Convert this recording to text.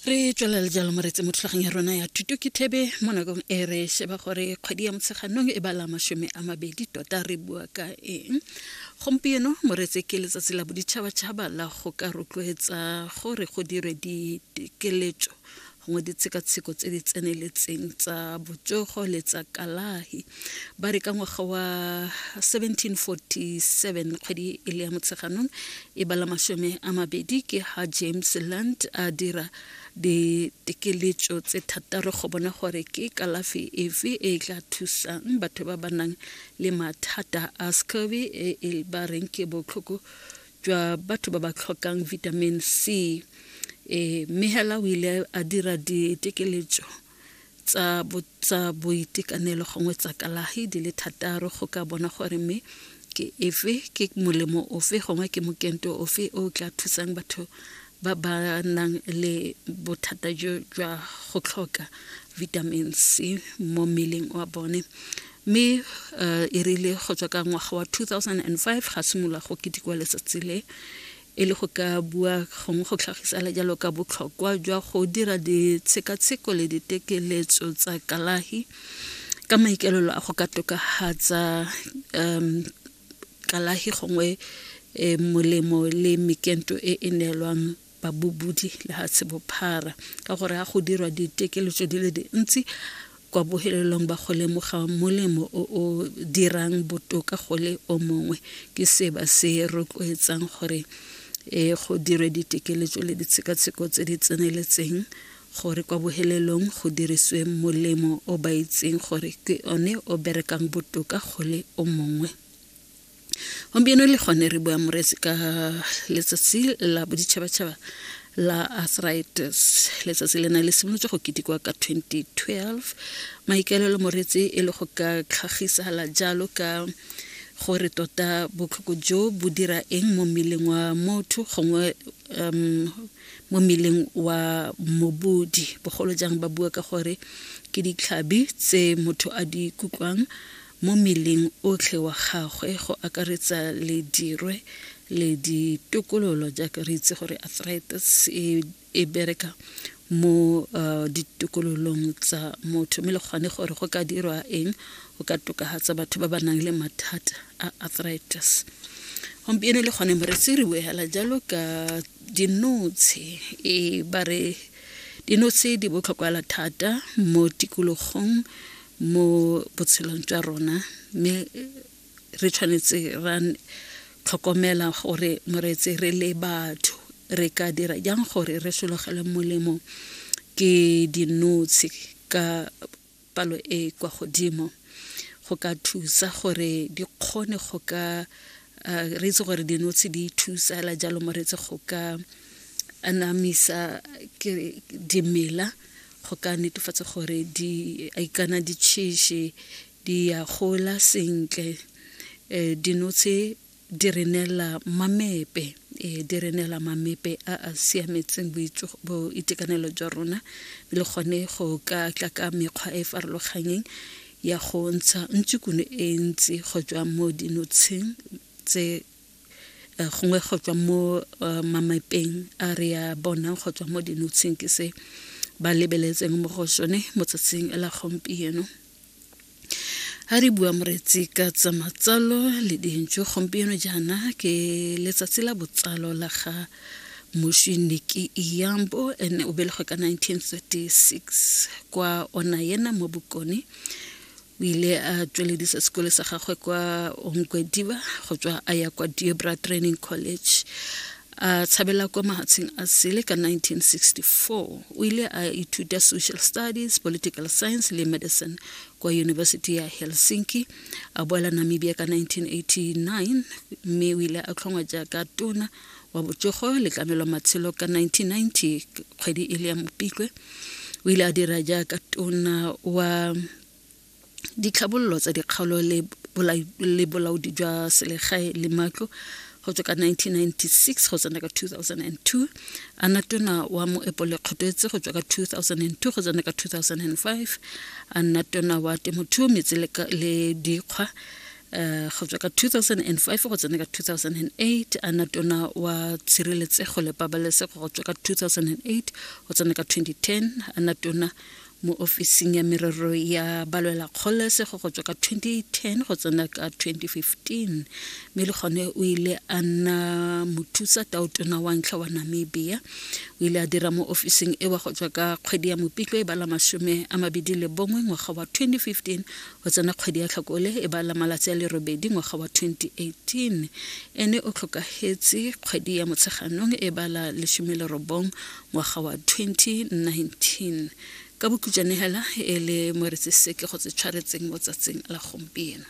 re tswelela le jalo moretse mo thulagong ya rona ya thuto ke thebe mo nakong e re sheba gore kgwedi ya motsheganong e bala masome a mabedi tota re bua ka eng gompieno moretse ke letsatsi la boditšhabatšhaba la go ka rotloetsa gore go dirwe dikeletso gongwe ditshekatsheko tse di tseneletseng tsa botsogo le tsa kalahi ba re ka ngwaga wa 1747 kgwedi e le ya motsheganong e bala masome a mabedi ke ha james land a dira ditekeletso tse thataro go bona gore ke kalafi efe e tla thusang batho ba ba nang le mathata a scurvy e e ba reng ke botlhoko jwa batho ba ba tlhokang vitamin c e mme hela o ile a dira ditekeletso tsa tsa boitekanelo gongwe tsa kalahi di le thataro go ka bona gore mme ke efe ke molemo ofe gongwe ke mokento ofe o tla thusang batho ba ba nang le bothata jo jwa go tlhoka vitamin c mo mmeleng wa bone mme um e rile go tswa ka ngwaga wa 2005 ga simolola go ketekwa letsatsi le e le go ka bua gongwe go tlhagisa le jalo ka botlhokwa jwa go dira ditshekatsheko le ditekeletso tsa kalahi ka maikaelelo a go ka tokafatsa um kalahi gongwe e, molemo le mekento e e neelwang babobodi lehatshe bophara ka gore ga go dirwa ditekeletso di le dintsi kwa bohelelong ba go lemoga molemo o o dirang botoka go le o mongwe ke se ba se rotloetsang gore e go dirwe ditekeletso le ditshekatsheko tse di tseneletseng gore kwa bohelelong go diriswe molemo o ba itseng gore ke one o berekang botoka go le o mongwe gompieno le gone re bua moresi ka letsatsi la boditšhabatšhaba la arthritis letsatsi le na le simolotse go ketekwa ka 2012 maikaelelo moretsi e le go ka tlhagisala jalo ka gore tota botlhoko jo bo dira eng mo mmeleng wa motho gongwe um mo mmeleng wa mobodi bogolo jang ba bua ka gore ke ditlhabi tse motho a di kutlwang mo mmeleng otlhe wa gagwe go akaretsa le dirwe le ditokololo jaaka re itse gore arthritis e, e bereka mo uh, ditokololong tsa motho mme le kgone gore go ka dirwa eng go ka tokagatsa batho ba ba nang le mathata a arthritis gompieno le kgone moretsi re boela jalo ka dinotshe e ba re dinotshe di botlhokwala thata mo tikologong mo botshelong jwa rona mme re tshwanetse ra tlhokomela gore moreetse re le batho re ka dira jang gore re sologele molemo ke dinotshe ka palo e e kwa godimo go ka thusa gore di kgone go ka uh, re itse gore dinotshe di thusa la jalo mo re itse go ka anamisa dimela go ka netefatsa gore di ikana ditšhiši di ya gola sentle um dinotshe di re neela mamepe e di re neela mamepe a a siametseng boitekanelo jwa rona le gone go ka tla ka mekgwa e e farologanyeng ya go ntsha ntsukune e ntsi go tswa mo dinotsheng tse eh, gongwe go tswa mo eh, mamepeng a re ya bonang go tswa mo dinotsheng ke se ba lebeletseng mo go sone motsatsing la gompieno ha re bua moretsi ka tsa matsalo le dintšo gompieno jaana ke letsatsi la botsalo la ga mošiniki iyambo ene o belegwe ka 1936 kwa ona yena mo bokone o ile a tsweledisa sekole sa gagwe kwa onkwediba go tswa a ya kwa diobra training college a tshabela kwa mahatsheng a sele ka 1964 o ile a ithuta social studies political science le medicine kwa university ya helsinki a boela namibia ka 1989 mme o ile a tlhongwa jaaka tona wa botsogo le tlamelo matshelo ka 1990 kgwedi e le ya mopitlwe o ile a dira jaaka tona wa ditlhabololo tsa dikgaolo le bolaodi jwa selegae le matlo go tswa ka 1996 go tsena ka 2002 a na tona wa moepo le kgotetse go tswa ka 2002 go tsena ka 2005 a nna tona wa temothuo metse le dikgwa eh, go tswa ka 2005 go tsena ka 2008 a na tona wa tshireletsego le pabalesego go tswa ka 2008 go tsena ka 2010 a na tona mo ofising ya merero ya balwela kgololesego go tswa ka 2010 go tsena ka 2015 mme le gone o ile a nna mothusa taotona wa ntlha wa namibia o ile a dira mo ofising ewa go tswa ka kgwedi ya mopitlo e bala masome a mabedi le bongwe ngwaga wa 2015 go tsena kgwedi ya tlhakole e bala malatsi a lerobedi ngwaga wa 2018 ene o tlhokagetse kgwedi ya motsheganong e bala lesome lerobong ngwaga wa 2019 ka bokhutšwane hela e le mo re tseseke go tse tshwaretseng mo tsatsing la gompieno